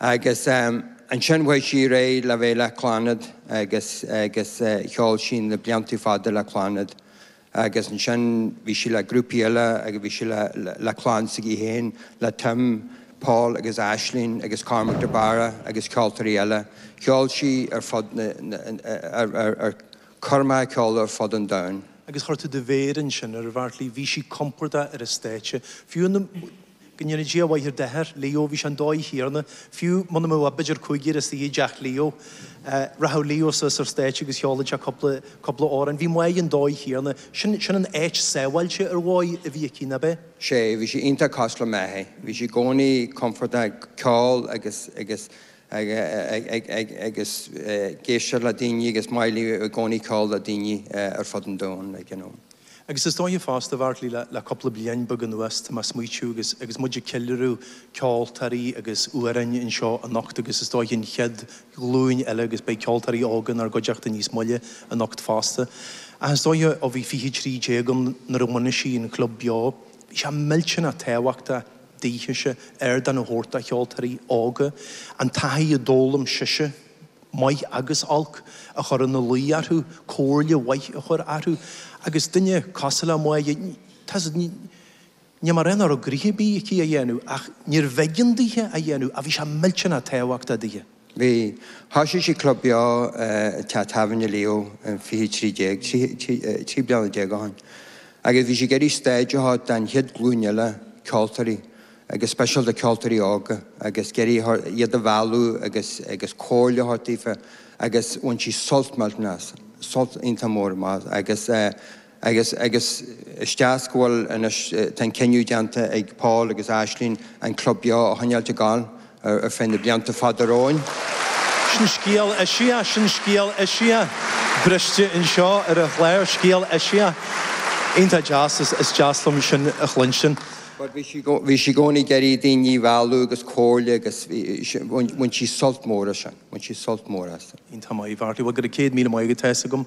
Agus ansin bhí sí réidh le bheith le Clannad agus agus cheol sí na blianta fada le Clannad agus ansin bhí sí le grúpaí eile agus bhí sí le le clann s'aici féin le Tim, Paul agus Aisling agus Cormac de Barra agus ceoltóirí eile. Cheol sí ar fud na ar ar ar chuir Máire a ceol ar fud an domhain. Agus chuir tú do mhéar ansin air, a Bheartlaí, bhí sí compordach ar an stáitse, fiú na. Go ndéana Dia a mhaith ar d'athair, Leo. Bhí sé an dóigh chéanna. Fiú muna mbeadh ach b'fheidir cúigear istigh i dTeach Leo. Rachadh Leo suas ar stáitse agus cheolfad sé cúpla, cúpla amhrán. Bhí Máire an dóigh chéanna. Sin, sin an áit sábháilte ar dhóigh a bhí aici, nárbh é? sé, bhí sí iontach cosúil le m'athair. Bhí sí i gcónaí compordach ag ceol agus, agus, agus ag éisteacht le daoine agus maith léi i gcónaí castáil le daoine ar fud an domhain like you know. Agus is dóiche fosta a Bheartlaí le le cúpla bliain beag anuas tá mé a' smaoitiú agus agus muid a' ceiliúradh ceoltóirí agus amhráin anseo anocht agus is dóiche an chéad ghlúin eile agus beidh ceoltóirí óga inár gcuideachta níos moille anocht fosta ach is dóiche ó bhí fiche trí déag ann nuair a bhunaigh sí an Club Beo bhí sé millteanach tábhachtach Daoithese ardán a thabhairt do cheoltóirí óga, an taithí a d'fhoghlaim sise, maith agus olc, a chur ina luí orthu, comhairle mhaith a chur orthu, agus duine cosúil le Máire, tá's, ní mar nach raibh gnaithe ar bith aici a dhéanamh, ach níorbh éigean daoithe a dhéanamh ach bhí sé millteanach tábhachtach daoithe. Bhí. Thoisigh sí club beo i dteach tábhairne Leo in fiche trí déag, trí bliana déag ó shoin, agus bhí sí ag iarraidh stáitse a thabhairt do'n chéad ghlúin eile ceoltóirí, agus speisialta ceoltóirí óga, agus ag iarraidh iad a mhealladh agus agus comhairle a thabhairt daofa, agus bhain sí sult millteanach as, sult iontach mór as, agus eh, Agus, agus is deas go bhfuil anois, tá an cinneadh déanta ag Paul agus Aisling an club beo a choinneáilt ag gabháil ar, ar feadh na blianta fada romhainn. Sin scéal, is ea, sin scéal, is ea, briste anseo ar an chlár, scéal, is ea. Iontach deas, is, is deas liom sin a chluinstin. But bhí sí, bhí sí i gcónaí ag iarraidh daoine a mhealladh agus comhairle agus bhí, bhain, bhain sí sult mór as sin, bhain sí sult mór as. Iontach maith, a Bheartlaí. Bhuel go raibh céad míle maith agat, tá a fhios agam.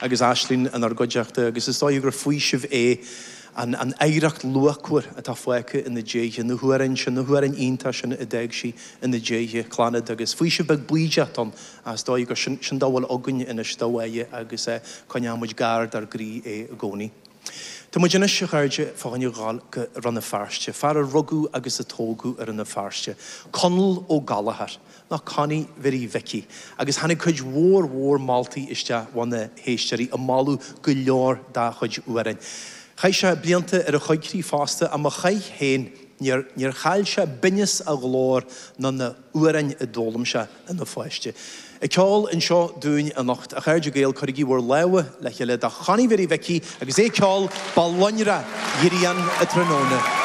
agus Aisling inár gcuideachta, agus is dóigh gur faoiseamh é an an oidhreacht luachmhar atá fágtha ina diaidh, na hamhráin sin, na hamhráin iontacha sin a d'fhág sí ina diaidh, Clannad, agus faoiseamh beag baoideach ann is dóigh gur sin, sin dá bhfuil againn anois de Mháire agus coinneoimid gar dár gcroí é i gcónaí. Tá muid anois, a chairde, fá choinne dhul go Rann na Feirste, fear a rugadh agus a tógadh i Rann na Feirste, Conall Ó Gallchóir, ná Connie Mhiri Mhici, agus tháinig cuid mhór mhór moltaí isteach ó na héisteoirí ag moladh go leor dá chuid amhrán. Chaith sé blianta ar a choigcríoch fosta, ach má chaith féin, níor chaill sé binneas a ghlóir ná na hamhráin a d'fhoghlaim sé ina pháiste. Ag ceol anseo dúinn anocht, a chairde Gael, cuirigí bhur lámha le chéile do Chonnie Mhiri Mhici! Agus é ag ceol, Ba lonrach grian an tráthnóna.